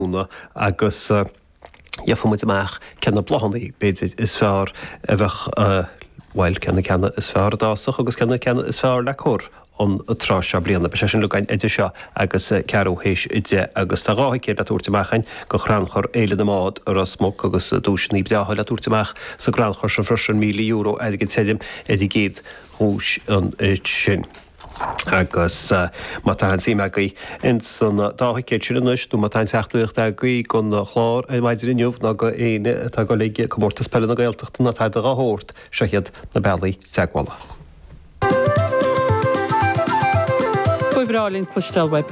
mhúineadh agus gheofaimid amach cé na bláthanna, b'fhéidir, is fearr a bheadh, bhuel, cé na ceanna is fearr a d'fhásfadh agus cé na ceanna is fearr le cur an tráth seo bliana. Beidh sé sin le goil idir seo agus ceathrú théis a deich agus tá dhá thicéad le tabhairt amach a'inn go Chrannchur Fhéile na mBád i Ros Muc agus duaiseanna breátha le tabhairt amach sa gcrannchur sin freisin, €1,000 airgid tirim ar an gcéad duais ansin. Agus má tá aon tsuim agaibh ins an dá thicéad sin anois, nó má tá aon teachtaireacht agaibh gon chlár ar maidin inniu ná go éinne atá ag dul chuig Comórtas Peile na Gaeltachta ná tada dhá shórt, seo hiad na bealaí teagmhála. Ba bhreá linn cloisteáil uaibh!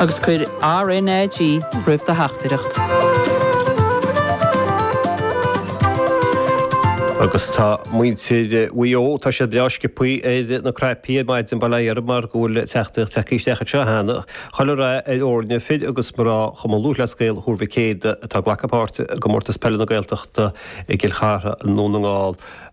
agus cuir RNAG roimh do theachtaireacht. Agus tá muintir Mhaigh Eo, tá siad breá sciopthaí ar na cnaipí ar maidin, bail ó Dhia orthub mar go bhfuil teachtaireacht tagtha isteach anseo cheana chuile rath ar fhoireann fir agus mná Chumann Lúthchleas Gael Thuar Mhic Éadaigh atá ag glacadh páirte i gComórtas Peile na Gaeltachta i gCill Chartha i nDún na nGall.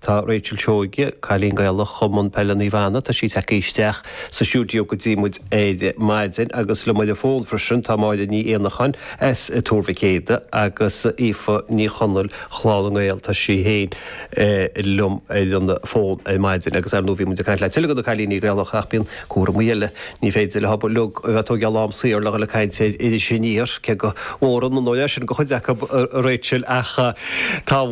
Tá Rachel Seoige, Cailín Gaelach Chumann Peile Naomh Anna, tá sí tagtha isteach sa stiúideo go dtí muid ar maidin agus liom ar an bhfón freisin tá Máire Ní Éanacháin as Tuar Mhic Éada agus Aoife Ní Chonaill, CLG, tá sí féin liom ar an bhfón ar maidin agus ar ndóigh bhí muid ag caint le tuilleadh de na cailíní Gaelacha ach bíonn cúramaí eile, ní féidir le cuid acub a bheith tóigthe lán saor le dhul ag caint ar Iris Aniar, cé go bhfóireann an oiread sin de chuid acu a Rachel ach tá.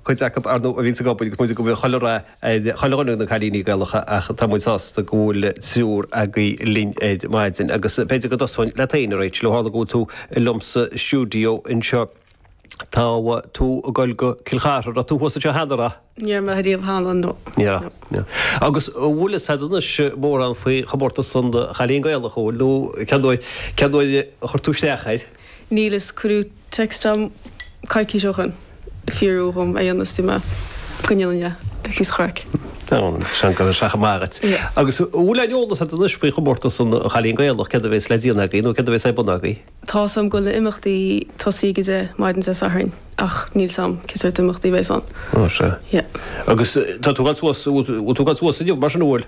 cuid acu, ar ndóigh, a bhíonn ag obair go pointe go bhfuil chuile rath ar chuile dhuine de na cailíní Gaelacha ach tá muid sásta go bhfuil triúr agaibh linn ar maidin agus b'fhéidir go dtosóinn leat féin, a Rachel. Ó tharla go bhfuil tú liom sa stiúideo anseo, tá tú ag goil go Cill Chartha, raibh tú thuas ansin cheana, a raibh? Ní raibh riamh cheana, no. Ní raibh, no. Agus an bhfuil a fhios a'd anois mórán faoi chomórtas an Chailín Gaelach, an bhfuil, nó cén uair a chuir tú isteach air? Níl a fhios, cuireadh text dhom coicís ó shin, ag fiafraí dhom é a dhéanamh is dúirt mé go ndéanfainn é, ah, píosa craic. Seans go raibh sé chomh maith agat. Agus an bhfuil aon eolas agat anois faoi chomórtas an Chailín Gaelach, céard a bheas le déanamh agaibh nó céard a bheas ar bun agaibh? Tá 's a'm go bhfuil na himeachtaí ag tosaí ag a deich maidin Dé Sathairn ach níl 's a'm cé sórt imeachtaí a bheas ann. Ó, sea. Yeah. Agus tá tú ag dul suas, bhfuil tú ag dul suas inniu mar sin, an bhfuil?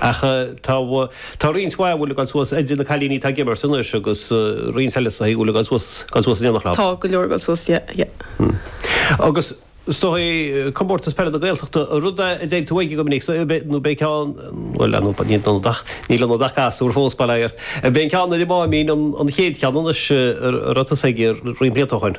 Ach tá roinnt mhaith agaibh le goil suas, idir na cailíní tá ag imirt anois agus roinnt eile is a bhfuil le goil suas, goil suas in aon chlub. Tá go leor ag goil suas, yeah, yeah. Agus is dóigh Comórtas Peile na Gaeltachta, an rud é a dtéann tú aige go minic, so nó ab é an ceann, bhuel leanúint ba, níl ionat ach, níl ionat ach gasúr fós, bail ort. Ab é an ceann ar an Máimín an chéad cheann anois a raibh tusa aige roinnt blianta ó shoin.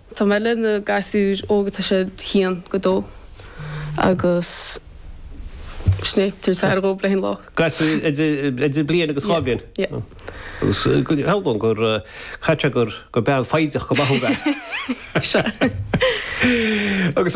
Tá mé leis na gasúir óg atá siad 1-2 agus sin é, tar éis thar dhó bliain lá. Gasúir idir bliain agus dhá bliain? Yeah, yeah. Agus go bhfios dom go gcaithfidh gur bean foighdeach go maith thú bheith. Sea. Agus.